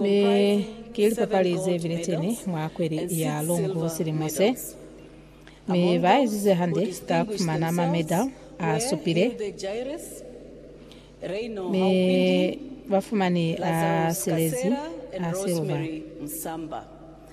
Mi ki lipapali ze bileteni mwa kweli ya Longu silimo se, mi ba ezize hande ka kufumana ma medal a supile, mi ba fumani a silezi a silver.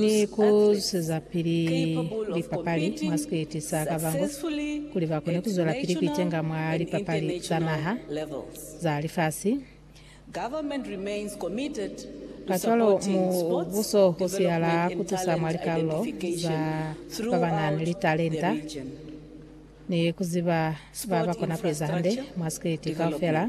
ni ku zwezapili lipapali mwa sikwiti sa ka bango kuli ba kone ku zwelapili ku itenga mwa lipapali za naha, za lifasi. Kacwalo, mubuso u siyala ku tusa mwa likalolo za ba ba na ni litalenta ni ku ziba ba ba kona ku eza hande mwa sikwiti kaufela.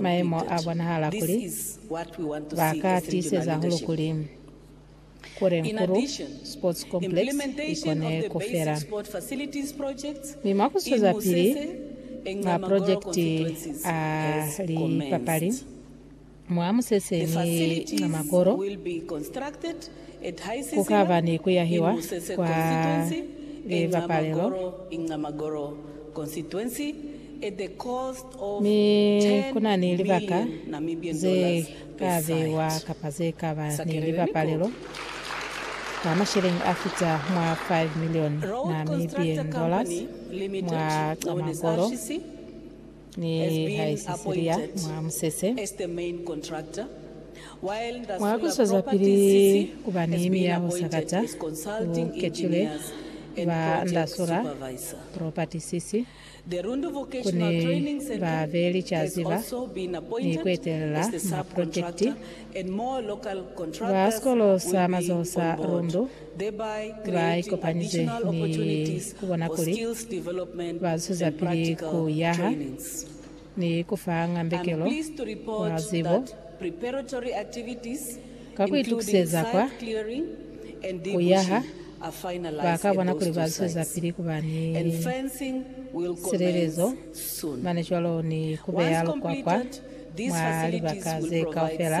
maimo a bonahala kuli ba ka tiiseza hahulu kuli Kurenkuru Sports Complex i kone ku fela. Mi mwa ku zwezapili maprojekiti a lipapali mwa Musese ni Nxamakoro, Ku ka ba ni ku yahiwa kwa libapalelo, mi ku na ni libaka ze ka beiwa kapa ze ka ba ni libapalelo ka masheleñi a fita mwa 5 milioni Namibian dollars mwa Camagoro. Nihaike sili ya mwa musese, mwa ku zwezapili ku ba ni miyaho sakata, u ketile ba Ndasula Property CC. Ku ni ba be licazi ba ni ku etelela ma projekiti ba sikolo sa mazoho sa Rundu ba ikopanize ni ku bona kuli ba zwezapili ku yaha ni ku fa ngambekelo wa zibo ka ku itukiseza kwa ku yaha. Ba ka bona kuli ba zwezapili ku ba ni silelezo mane cwalo ni ku beya lukwakwa mwa libaka ze kaufela.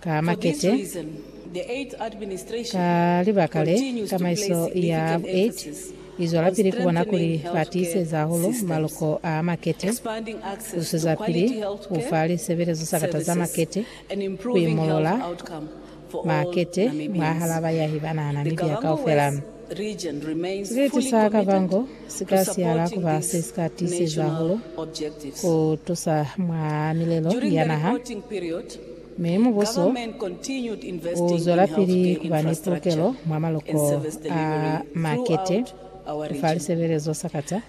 Ka makete, ka libaka le, tamaiso ya bu 8 izwelapili kubona kuli ba tiiseza hahulu maloko a makete, ku zusezapili ku fa lisebelezo sa kata za makete, ku imolola makete mwahal'a bayahi ba naha ya Namibia kaufela. Siciti sa kabango si ka siala ku ba se si ka tiiseza hahulu ku tusa mwa milelo ya naha, mi mubuso u zwelapili ku ba ni pulukelo mwa maloko a makete fa lisebelezo sakata.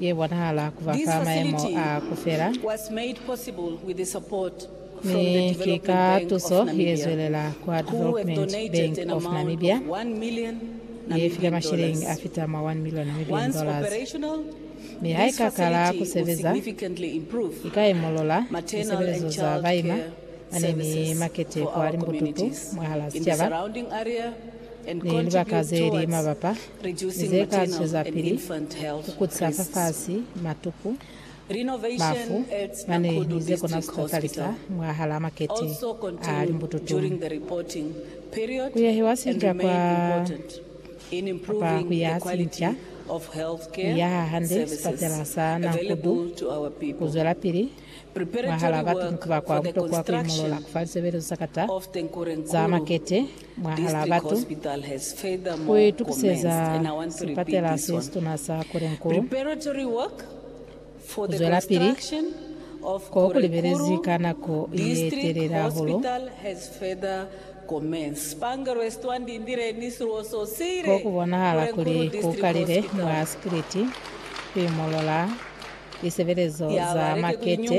ye bonahala ku ba fa mayemo a ku fela, mi ki ka tuso ye zwelela kwa Development Bank of Namibia, ye file mashilingi a fita mwa 1 million Namibian dollars. Mi ha i ka kala ku sebeza, i ka imulula lisebelezo za baima ba ne ni makete kwa limbututu mwahal'a sicaba ni libaka ze li mabapa. ze ka zwezapili ku kuca fafasi matuku, bafu, mane ni ze kona ku kakalisa mwahalaa makete a limbututulu. Ku yahiwa sinca kwa kapa ku yaha sinca ku yaha hande sipatela sa Nankudu ku zwelapili mwahalaa batu ni ku ba kwa butokwa ku imolola ku fa lisebelezo za kata za makete. mwahal'a batu ku itukiseza sipatela se situna sa Korenko. Ku zwelapili ko ku libelezi ka nako ye telele hahulu ko ku bonahala kuli ku kalile mwa sikiliti ku imolola lisebelezo za makete.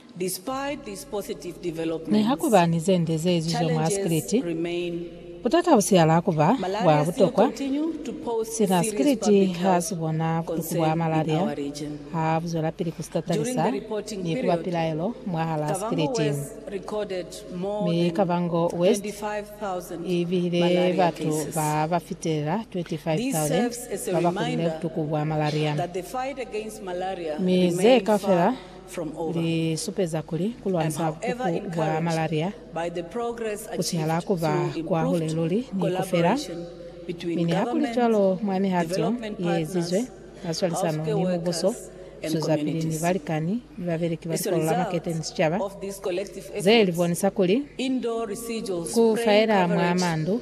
Niha ku ba ni ze nde ze ezizwe mwa sikiliti, butata bu siyala ku ba bwa butokwa. Sina sikiliti ha si bona butuku bwa malaria ha bu zwelapili ku si tatalisa ni ku ba pilaelo mwahalaa sikiliti. Mi Kavango West i bihile batu ba ba fitelela 25,000 ba ba kulile butuku bwa malaria. Mi ze kaufela li supeza kuli ku lwanisa bukuku bwa malaria ku sihala ku ba kwahule luli ni ku fela. Mi nihakulicwalo, mwa mihato ye ezizwe ka swalisano ni mubuso, buswezapili ni balikani ni babeleki ba Likolo la Makete ni sicaba, ze li bonisa kuli ku faela mwa mandu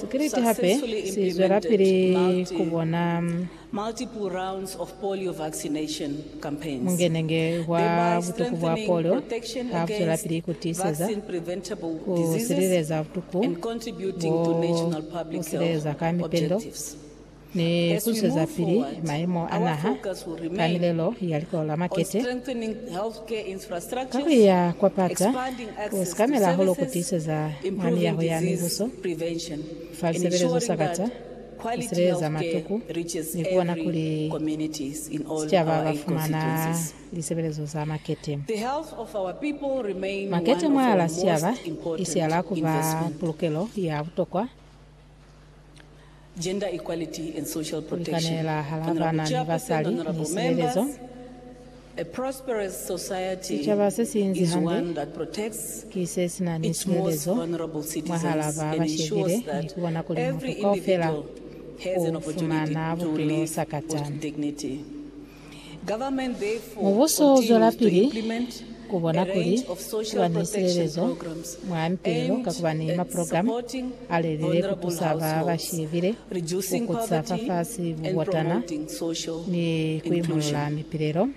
Sikriti hape si zwelapili ku bona mungenenge wa butuku bwa polio ha bu zwelapili ku tiiseza ku sileleza butuku bo bu sileleza ka mipendo. Ni busezapili mayemo a naha ka milelo ya likolo la makete ka ku iya kwa pata, ku sikamela hahulu ku tiiseza mwa miyaho ya mibuso fa lisebelezo sa kata, ku sileleza matuku, ni ku bona kuli sicaba ba fumana lisebelezo za makete. Makete mwaalaa sicaba i sialaa ku ba pulukelo ya butokwa. Ku likanela halaa baana ni basali ni sebelezo. Sicaba se si inzi hande ki se si na ni sulelezo mwahalaa ba ba shebile ni ku bona kuli mutu kaufela u fumana bupilo sakatani. Mubuso uzwelapili kubona kuli kuba ni silelezo mwa mipilelo ka kuba ni maprogramu alelile kutusa ba bashibile, kukutisa fafasi bubotana, ni kuimolola mipilelo.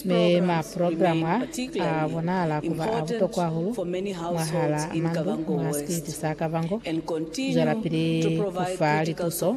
Mi maprogramu a, a bonahala kuba a butokwa hahulu mwahal'a mandu mwa sikiliti sa Kavango, zwelapili kufa lituso,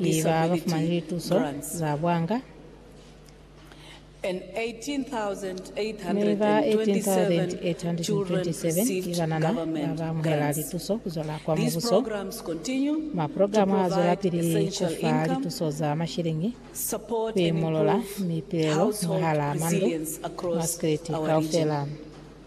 ni ba ba fumani lituso za bwanga mi ba 18,827 ki banana ba ba amuhela lituso ku zwela kwa Mubuso. Maprogramu a zwelapili ku fa lituso za mashiliñi ku imolola mipilelo mwahal'a mandu mwa Sireti kaufela.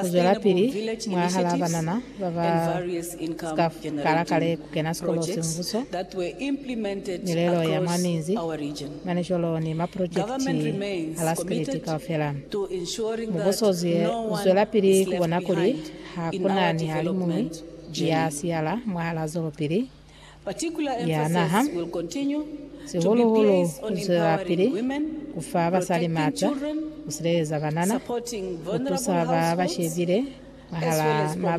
Kuzwelapili mwahalaa banana baba sika kala kale kukena sikolo sembuso, milelo ya mwa minzi, manicolo ni maprojekiti a la spiliti kaufela. Mubuso uzwelapili kubona kuli hakuna nihalimuñwi ya siyala mwahalaa zolopili Ya naha, sihulu-hulu ku zwelapili ku fa basali maata, ku sileleza banana, ku tusa ba ba shebile mwahal'a mabala.